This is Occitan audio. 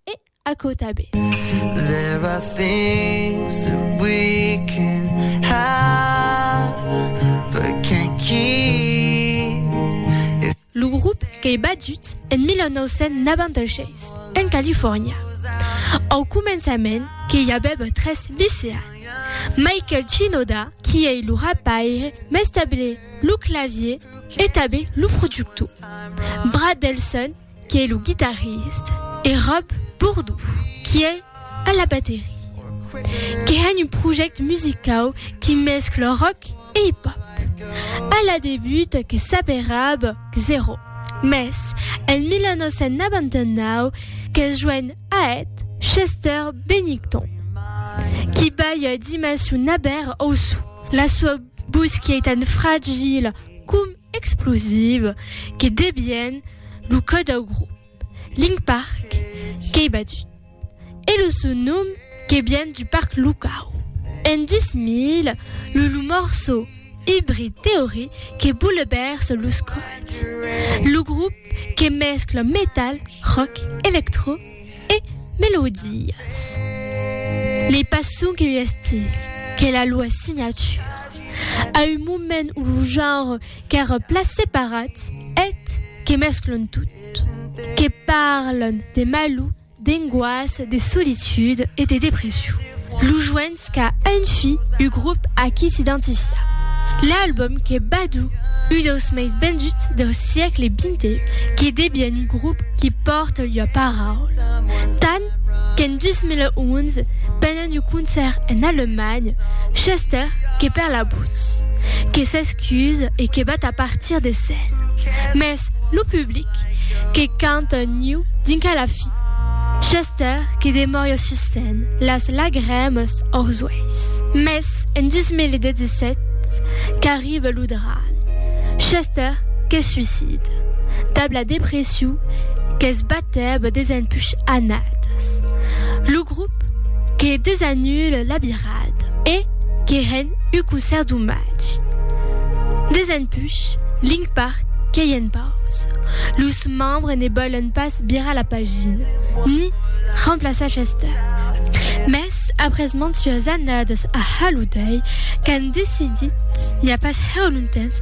E aquò tanben. There are things that we can have but can't keep. Lo grop qu'ei batut en 1996, en Califòrnia. Au començament qu'i avèva tres liceans, Michael Shinoda, qui ei lo rapaire, mestable lo clavier e tanben lo productor, Brad Delson, Qu'es lo guitarrist e Rob Bourdou qui es a la baterie, que hèn un projèct musicau qui mescla rock e hip-hop. A la debut que s'aperab Xero, mès en 1999 qu'es joen a eth Chester Bennington, qui balha dimession aber auçu. La sua vos qui ei tan fragila com explosive que debien lo cò dau grop Link Park qu'ei batut e lo son nom que vien du parc locau. En 2000, lo lo morçò Hybrid Theory que boulevèrsa los còdes. Lo grop que mescla metal, rock, electro, E melodias. N'ei pas sonque un estil, qu'ei la lua signatura. A un moment o lo genre qu'èra plan separat, eth que mesclon tot, que parlen de malur, d'engoassa, de solitude e de depression. Lo joen Esca un fi u grup a qui s'identifia. L'album qu'es badu u deus meis benduts deu siecle xx que debien un grup qui pòrte ua paraula, tant qu'en 2011, pendent un concèrt en Alemanha, Chester que perd la votz, que s'excuse e que vat a partir de scène, mès lo public que canta niu dinc a la fi. L'auteur que demòria susten las lagrèmas aux uèis. Mès en 2017 qu'arriba lo drame, Chester que suicida dab la depression qu'es batèba des empuch annadas. Lo grop que desanula la birada e que ren ua concèrt d'omatge. Des empuch, Link Park qu'ei en pausa. Los membres ne vòlen pas Virar la pagina, ni remplaçar Chester. Mès après mantuas annadas a haludei qu'an decidit, n'i a pas hèu longtemps,